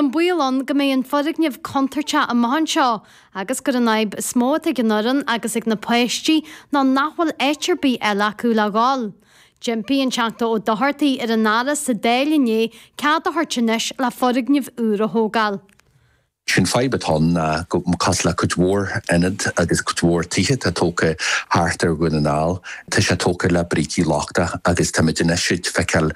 an baol ann go mbeidh an foirgneamh contúirteach amach anseo agus gur an fhadhb is mó atá ag an fhoireann agus ag na páistí ná nach bhfuil áit ar bith eile acu le dhul. D'impigh an Teachta Ó Dochartaigh ar an Aire sa Dáil inné cead a thabhairt anois le foirgneamh úr a thógáil. Sé'n fadhb atá ann ná go cosúil le cuid mhór ionad agus cuid mhór tithe atá tógtha thart ar Dhún na nGall Tá sé tógtha le brící lochtacha agus táimid anois ag feiceáil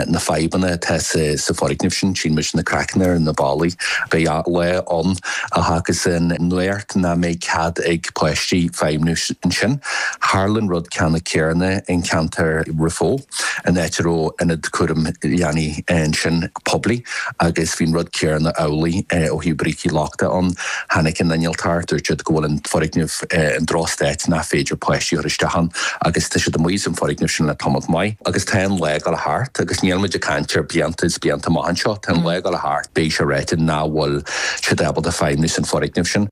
na fadhbanna atá sa foirgneamh sin. Tchíonn muid na craiceanna ar na ballaí. Beidh lá ann, a thagas ann nuair nach mbeidh cead ag páistí feidhmniú ansin. Tharla an rud ceannann céarna in ceantar Raphoe. in áit a raibh ionad cúram leanaí ansin poiblí agus bhí an rud céanna amhlaidh ó thaobh brící lochtacha ann. Tháinig na hinnealtóirí, dúirt siad go bhfuil an foirgneamh in drochstát nach féidir páistí a chur isteach ann agus tá siad amuigh as an foirgneamh sin le tamalt maith. Agus tá an lá ag dul a theacht agus níl muid ag caint ar blianta is blianta amach anseo, tá an lá ag dul a theacht, beidh sé ráite nach bhfuil siad ábalta feidhmiú san foirgneamh sin.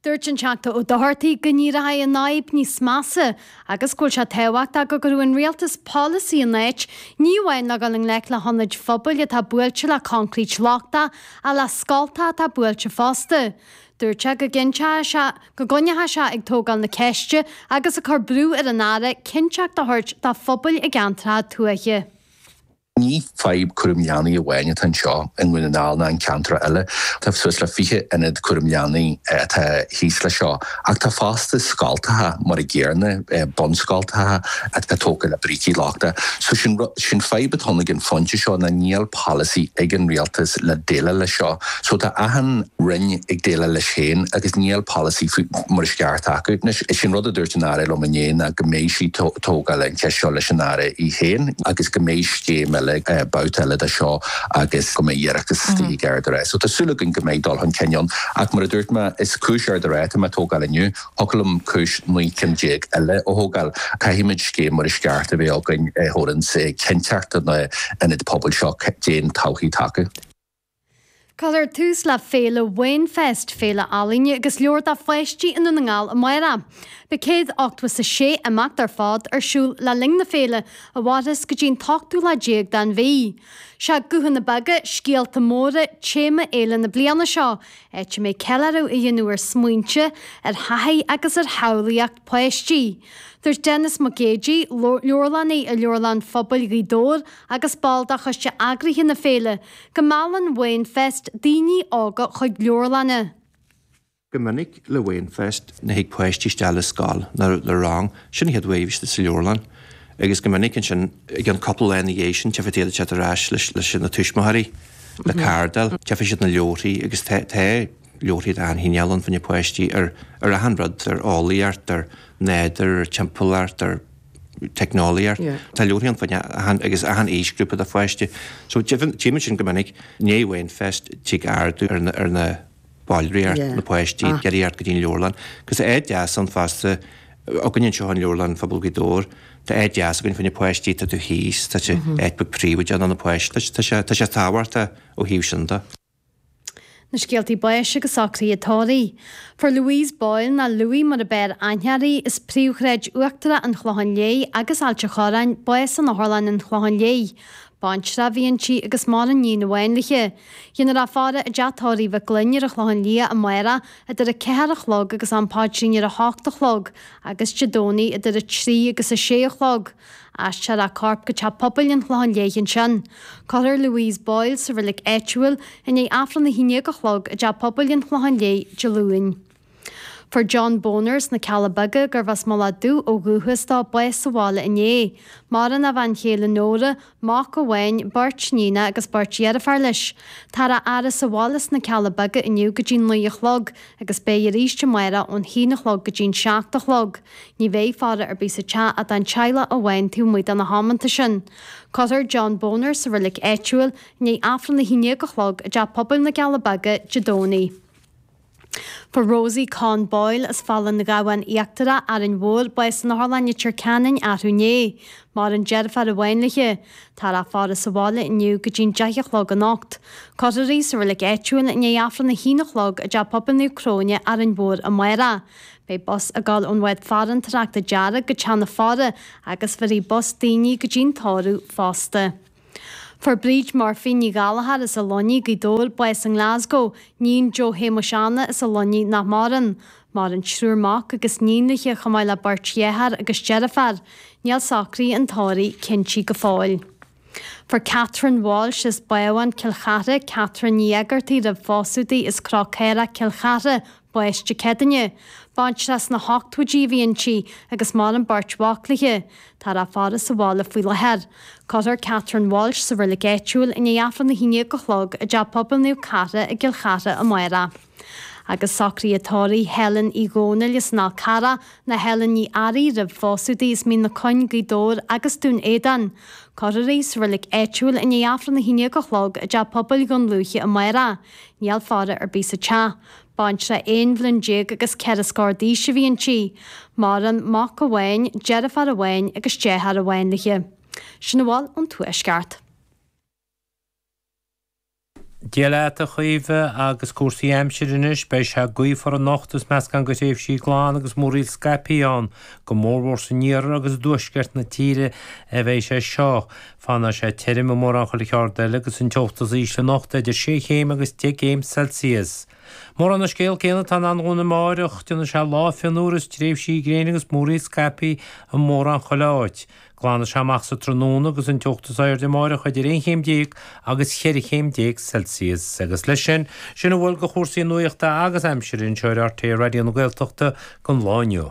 Dúirt an Teachta Ó Dochartaigh go n-éireoidh an fhadhb níos measa agus go bhfuil sé tábhachtach go gcuirfeadh an Rialtas polasaí in áit, ní amháin le dhul i ngleic le hionaid phobail atá buailte le coincréit lochtach ach le scoltacha atá buailte fosta. Dúirt sé go gcinnteoidh sé go gcoinneoidh sé ag tógáil na ceiste agus ag cur brú ar an Aire cinnteacht a thabhairt do phobail i gceantracha tuaithe. Ní fadhb cúram leanaí amháin atá anseo i nDún na nGall ná in ceantracha eile. Tá suas le 20 ionad cúram leanaí atá thíos leis seo. Ach tá fosta scoltacha, mar a gcéanna, bunscoltacha atá tógtha le brící lochtacha. So sin rud, sin fadhb atá ann ag an phointe seo ná níl polasaí ag an Rialtas le déileáil leis seo. So tá achan Roinn ag déileáil leis féin agus níl polasaí faoi mar is ceart acu. Anois, sin rud a dúirt an Aire liom inné ná go mbeidh sí ag tógáil an cheist seo leis an Aire í féin. agus go mbeidh scéim eile, babhta eile de seo agus go mbeidh iarratas istigh ag Ard an Rátha. So tá súil againn go mbeidh dul chun cinn ann. Ach mar a dúirt mé, is cúis Ard an Rátha atá mé ag tógáil inniu. Thiocfadh liom cúis naoi ceann déag eile a thógáil. Caithfimid scéim mar is ceart a bheith againn a thabharanns cinnteacht do na ionaid pobail seo. Cén todhchaí atá acu. Cuirfear tús le féile Wainfest, féile ealaíne agus leabhar do pháistí i nDún na nGall amárach. Beidh céad ochtó 's a sé imeacht ar fad ar siúl le linn na féile a mhairfeas go dtí an t-ochtú lá déag den mhí. Sé Guthanna Beaga, Scéalta Móra téama fhéile na bliana seo, áit a mbeidh ceiliúradh á dhéanamh ar smaointe, ar thaithí agus ar shamhlaíocht páistí. Dúirt Denis Mac Géidigh, Leabharlannaí i Leabharlann Phobail Ghaoth Dobhair agus ball de choiste eagraithe na féile, Go meallann Wainfest daoine óga chuig leabharlanna. Go minic le Wainfest thig páistí isteach le scoil nó le rang, sin an chéad uair a bhí siad sa leabharlann, agus go minic ansin, achan cúpla lá ina dhiaidh sin, tífidh tú iad ar ais leis na tuismitheoirí le cardáil, tífidh siad na leabharthaí agus tá leabharthaí de achan chineál ann fá choinne páistí ar ar achan rud, ar eolaíocht, ar nádúr, ar timpeallacht, ar. teicneolaíocht. Tá leabharthaí ann fá choinne achan aoisghrúpa de pháiste. So tímid sin go minic, i ndiaidh Wainfest, tig ardú ar na, ar na ballraíocht, na páistí, ag teacht go dtí an leabharlann. Agus tá áit dheas ann fosta, againne anseo in Leabharlann Phobail Ghaoth Dobhair, tá áit dheas againn fá choinne páistí, tá tú thíos, tá tú, áit bheag phríobháideach do na páistí, tá sé, tá sé tábhachtach ó thaobh sin de. Na scéalta báis agus socruithe tórraimh. Fuair Louise Boyle, nó Louie mar ab fhearr aithne uirthi, as príomhshráid uachtarach an Chlocháin Léith agus Ailt a' Chorráin, bás in Otharlann an Chlocháin Léith. Baintreach a bhí inti agus maireann í níon amháin léithi. Déanfar í a fhaire i dTeach Tórraimh Mhic Fhloinn ar an Chlochán Liath amárach idir a ceathair a chlog agus am paidrín ar a hocht a chlog agus Dé Domhnaigh idir a trí agus a sé a chlog. Aistreofar a corp go teach pobail an Chlocháin Léith ansin. Cuirfear Louise Boyle sa reilig áitiúil i ndiaidh Aifreann a haon dhéag a chlog i dteach pobail an Chlocháin Léith Dé Luain. Fuair John Boner sna Cealla Beaga, gurbh as an Mhullach Dubh ó dhúchas dó, bás sa bhaile inné, maireann a bhean chéile Nóra, Mac amháin, beirt níonacha agus beirt deirfiúr leis. Táthar á fhaire sa bhaile sna Cealla Beaga inniu go dtí'n naoi a chlog, agus beidh arís amáireach ón haon a chlog go dtí'n seacht a chlog. Ní bheidh faire ar bith sa teach ach don teaghlach amháin taobh amuigh de na hamanta sin. Cuirfear John Boner sa reilig áitiúil i ndiaidh Aifreann a haon dhéag a chlog i dTeach Pobail na gCeall Beaga Dé Domhnaigh. Fuair Rosie Conn Boyle as Fál an Ghabhann Íochtarach, Árainn Mhór, bás in Otharlann Leitir Ceanainn arú inné. Maireann deirfiúr amháin léithi. Táthar á faire sa bhaile inniu go dtí'n deich a chlog anocht. Cuirfear í sa reilig áitiúil i ndiaidh Aifreann a h-aon a chlog i dTeach Pobail Naomh Cróine, Árainn Mhór amáireach. Beidh bus ag dul ón bhád farantóireachta Dearg go teach na faire agus bhéarfaidh bus daoine go dtí'n tórramh fosta. Fuair Bríd Murphy Ní Ghallchóir as an Luinnigh, Gaoth Dobhair, bás i nGlasgow, níon Joe Shéamuis Anna as an Luinnigh nach maireann. Maireann triúr mac agus níon léithi chomh maith le beirt dheartháir agus deirfiúr. Níl socruithe an tórraimh cinnte go fóill. Fuair Catherine Walsh as Bábhún, Cill Chartha, Catherine Ní Eigeartaigh roimh phósadh di as Cró Caorach, Cill Chartha, Baiste Cedaine, baintreach sna hochtóidí a bhí inti agus maireann beirt mhac léi, táthar á faire sa bhaile faoi láthair. Cuirfear Catherine Walsh sa reilig áitiúil i ndiaidh Aifreann a hAon Déag a Chlog i dTeach Pobail Naomh Cartha i gCill Chartha amárach. Agus socruithe tórraimh Helen Uí Dhomhnaill as an Fhál Carrach, nó Helen Ní Fhearraigh roimh phósadh di, as Mín na Cuinge, Gaoth Dobhair agus Dún Éideann. Cuirfear í sa reilig áitiúil i ndiaidh Aifreann a hAon Déag a Chlog i dTeach Pobail Dhún Lúiche amárach. Níl faire ar bith sa teach. Baintreach aon bhliain déag agus ceithre scór d'aois a bhí inti. Maireann mac amháin, deirfiúr amháin agus deartháir amháin léi. Sin a bhfuil ón Tuaisceart. Dia leat a Chaoimhe, agus cúrsaí aimsire anois, beidh sé gaofar anocht is meascán de thréimhsí glan agus múraíl scaipthe ann, go mórmhór san iarthar agus i dtuaisceart na tíre a bheidh sé seo. Fanfaidh sé tirim i mórán chuile cheard eile agus an teocht is ísle anocht idir sé chéim agus deich gcéim Celsius. Mórán an scéal céanna atá i ndán dúinn amáireach, déanfaidh sé lá fionnuar is tréimhsí gréine agus múraíl scaipthe i mórán chuile áit. Glanfaidh sé amach sa tráthnóna agus an teocht is airde amáireach idir aon chéim déag agus cheithre chéim déag Celsius. Agus leis sin, sin a bhfuil de chúrsaí nuachta agus aimsire anseo ar RTÉ Raidió na Gaeltachta don lá inniu.